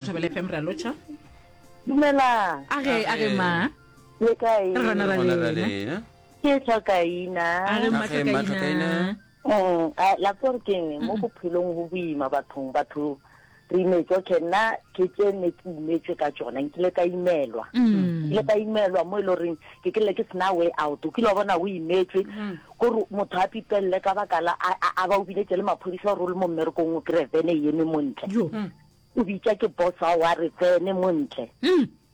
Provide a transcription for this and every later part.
Thobela FM ra lotšha. Dumelang. A ge a ge ma. Le kae? Re gona ra Gona ra lena. lena. Ke tswa kaina. A ge mma Age mma Tlhokaina. Tlhokaina. Mm, a- la tswa gore keng mo bophelong go boima bathong batho re imetswe okay nna ke tse ne ke imetswe ka tsona nkile ka imelwa Mm. nkile ka imelwa mo e le goreng ke kele ke sena way out o kile wa bona o imetswe kore motho a pipelele ka baka la a- a a ba o biletse le maphodisa gore o le mo mmerekong o kry-e vene e eme montle Yo. O bitša ke boss wa gagwe a re, Tsene mo ntle.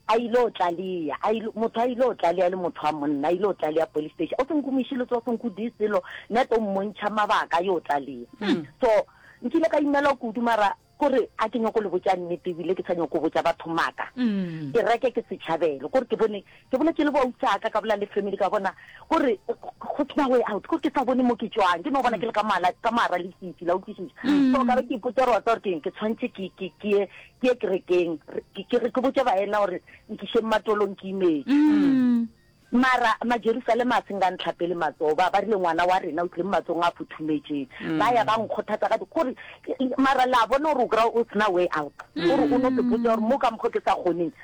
A ile go tlalea, a ile, motho a ile go tlalea, e le motho wa monna, a ile go tlalea police station. O se nkumiše le tso, o se nkudise selo, nna tlo mmontšha mabaka a yo tlalea. So, nkile ka imelwa kudu mara kore a ke nyoko le botša nnete ebile ke sa nyoko botša batho maaka. Kereke ke setšhabelo, kore ke bone Ke bola ke le bo ausi aka, ka bola le family ka bona gore go tsena way out, gore ke sa bone mo ke tšwang, ke no bona ke le ka mala ka mara le sisi la utlwisisa. So ka be ke ipotsa gore wa tsa gore keng ke tshwantse ke ke ke ye ke ye kerekeng ke ke ke botse baena gore nkišeng matolong ke imetse. Mara ma Jerusalema a seng ka ntlha pele matsoho ba ba rile ngwana wa rena o tlile mo matsong a futhumetšeng. Ba ya ba nkgothatsa ka gore mara la bona gore o kry o tsena way out gore o no ke botsa gore mo ka mokgo ke sa kgoneng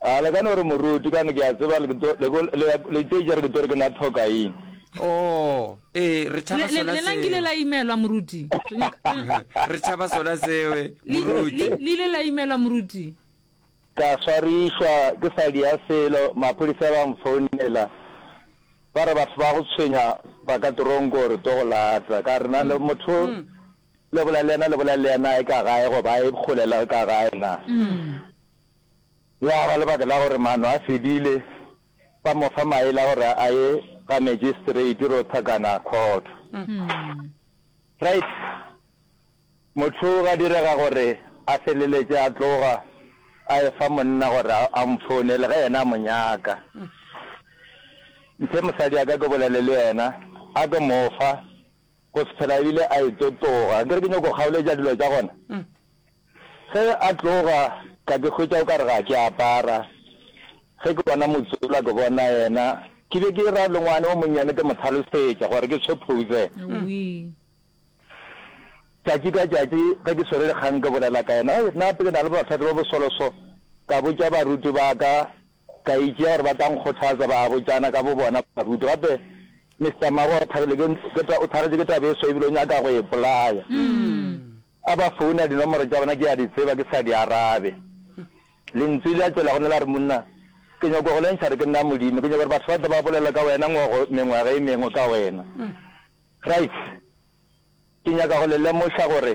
A le ka no re, Moruti, kane ke a tseba le tlo, le go, le ya, le tlo itša re ke tlo re ke na thokaing. Oo, ee, re Le, tšhaba le, sona le la nkile seo. la imelwa, Moruti. Re nyaka, Re tšhaba sona seo, le, le, Moruti. le ile la imelwa, Moruti. Ka swarišwa ke sa dia selo, maphodisa ba nfounela, ba re batho ba go tshwenya ba ka toronko gore tlo go lata. Ka re, na le motho, le bolela le yena, le bolela le yena, e ka gae, goba e kgole la ka gae na? Ya ba lebaka la gore maano a fedile, ba mo fa maele a gore a ye ga Magistrate Rotha kana Khotho. Right? Motho ga direga gore a feleletše a tloga a e fa monna gore a mo founele ge yena a mo nyaka. Mphe mosadi a ka ke bolele le yena, a ke mo fa. Go se phela ebile a eto tloga. Ke re ke nyoko go kgaoletša dilo tša gona. Ge a tloga ka ke hwetša o ka re ga ke apara. Ge ke bona Motsula ke bona yena. Ke be ke ra le ngwane o monnyane ke mo hlalosetša gore ke tshwe phouze. Tšatši ka tšatši ge ke swere dikgang ke bolela ka yena. Nna gape ke na le bohlahli bo bosolo so ka botša baruti ba ka Ka itšea gore ba tla nkgothatsa, ba botšana ka bobona baruti. Gape Mister Maro o thagetše ke taba ye swa e bile o nyaka go e ipolaya. A ba founa, dinomoro tša bona ke a di tseba, ke sa di arabe. Lentswe le a tšwela gona la re, Monna, ke nyaka go lentšha gore ke nna Modimo. Ke nyaka gore batho ba tle ba bolele ka wena ngogo mengwaga e mengwe ka wena. Right. Ke nyaka go le lemoša gore.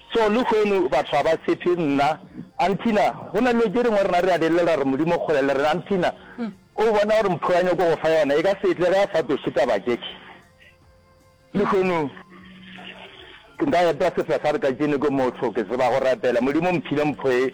So lehono batho ga ba sephe nna, Anthina, go na le dilo tše dingwe rena re a di lelela gore Modimo o kgole le rena. Anthina, o bona gore mpho ya nyoko go fa yona e ka se tle ge a sa tloše taba tše. Lehono nka epa sefasarka tšene ke motho, ke tseba go rapela. Modimo o mphile mpho ye,